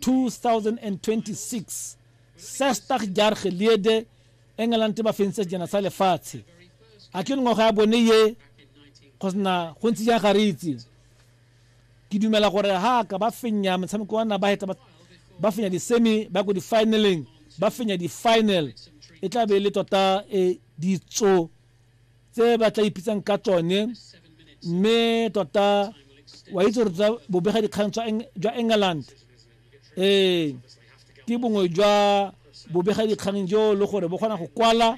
2026 sestag jaar gelede engeland ba fentse jana sa lefatshe a ke ngwaga ya bone ye go sena go ntse jang ga re itse ke dumela gore ha ka ba fenya motshameko wa na ba heta ba fenya di-semi ba ko di-finaleng ba fenya di-final e tla be e le tota e ditso tse ba tla ipitsang ka tsone mme tota wa itse gore tsa bobega dikgang jwa england ee ke bongwe jwa bobega dikgang jo le gore bo kgona go kwala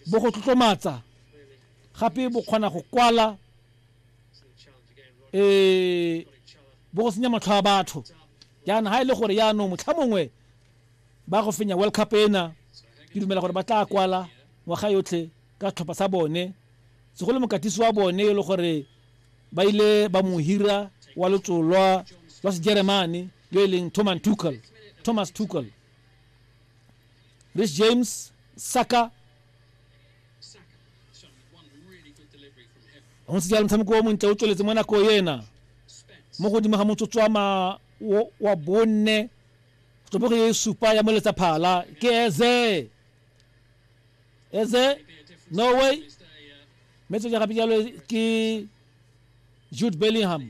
bo go tlotlomatsa gape bo kgona go kwala um bo go senya matlho a batho jaana ga e le gore yaanong motlha mongwe ba go fenya world cup ena ke dumela gore ba tla kwala ngwaga yotlhe ka setlhopha sa bone segolo mokatisi wa bone e le gore ba ile ba mo hira wa lotsolwa lwa sejeremane yo e leng thomas tuckel thomas tuckel rich james saka go ntse jalo motshameko o montle o tsweletse mo nako ena mo godimo ga motsotso wa bone Tsibogo e supa ya moletsa phala ke eze eze norway mme tsoja gape jalo ke jude bellingham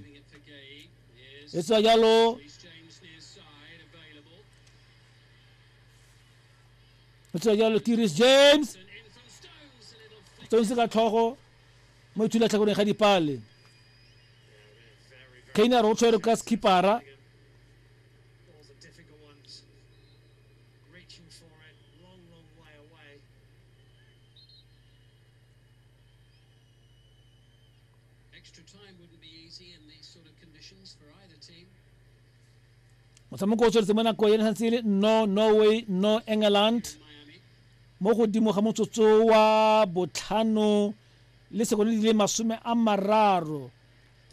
e tswa jalo e tswa jalo ke ris james stones ka tlhogo mo ithula tlhakoreng ga dipale kainer o tshwere ka skipara motshameko o tsweletse mo nako ene santse le no norway no england mo godimo ga motsotso wa botlhano le sekono di le masome a mararo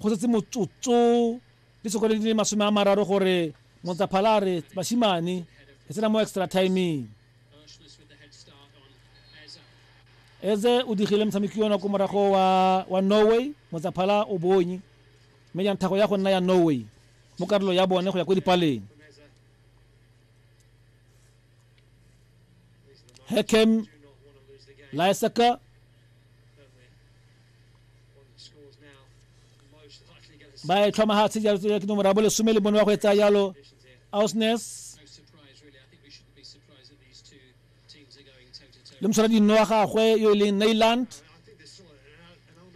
go setse motsotso Ditsokgwedi di le masome a mararo gore Motsaphala a re basimane e tsena mo extra timing. Eze o digile motshameki ona ko morago wa, wa Norway, Motsaphala o bonye mme jang thago ya go nna ya Norway mo karolo ya bone go ya ko dipaleng. Hekem Laisaka ba e tlhoma ha tse jalo ke nomoro ya bo lesome le bone wa go etsa yalo ausnes le mosala dinno wa gagwe yo e leng nailand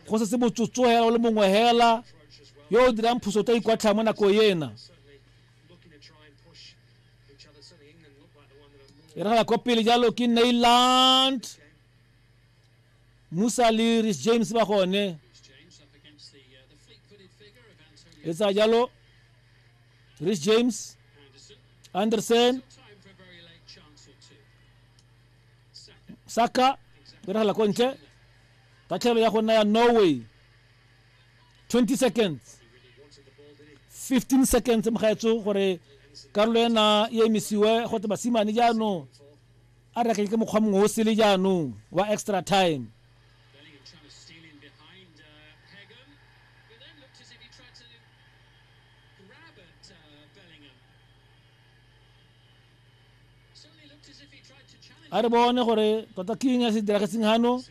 go se se botsotso hela o le mongwe hela yo o dirang phoso ta ikwatlha mo nako ena e re ga ya kwa pele jalo ke nailand musa le ris james ba gone e tsaya jalo ris james anderson saka e regela ko ntle tatlhelo ya go nna ya norway 20 seconds 15 seconds mogaetso gore karolo ena e emisiwe gote basimane jaanong a re ke mokgwa mongwe o sele jaanong wa extra time a re bone gore tota king ya se diragetseng gano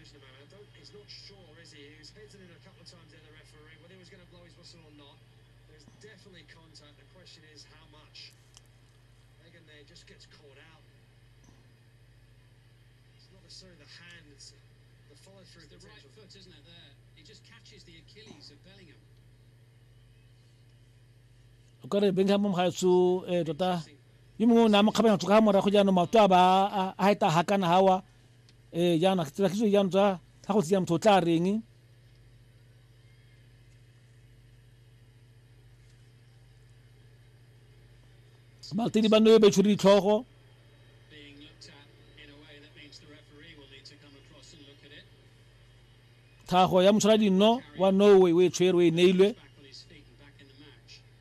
o ka re bengham mgaetso um eh, tota yo mongwe o ne a mo kgabanya tloga morago jaanong maoto a ba a eta ga kana gawa um eh, jaanong a tsela kitso jaanong tsa ga go tseya motho o tla reng baltedi ba nne ba itshwere ditlhogo tlhago ya motshwara dinno wa norway o e tshwere o e neilwe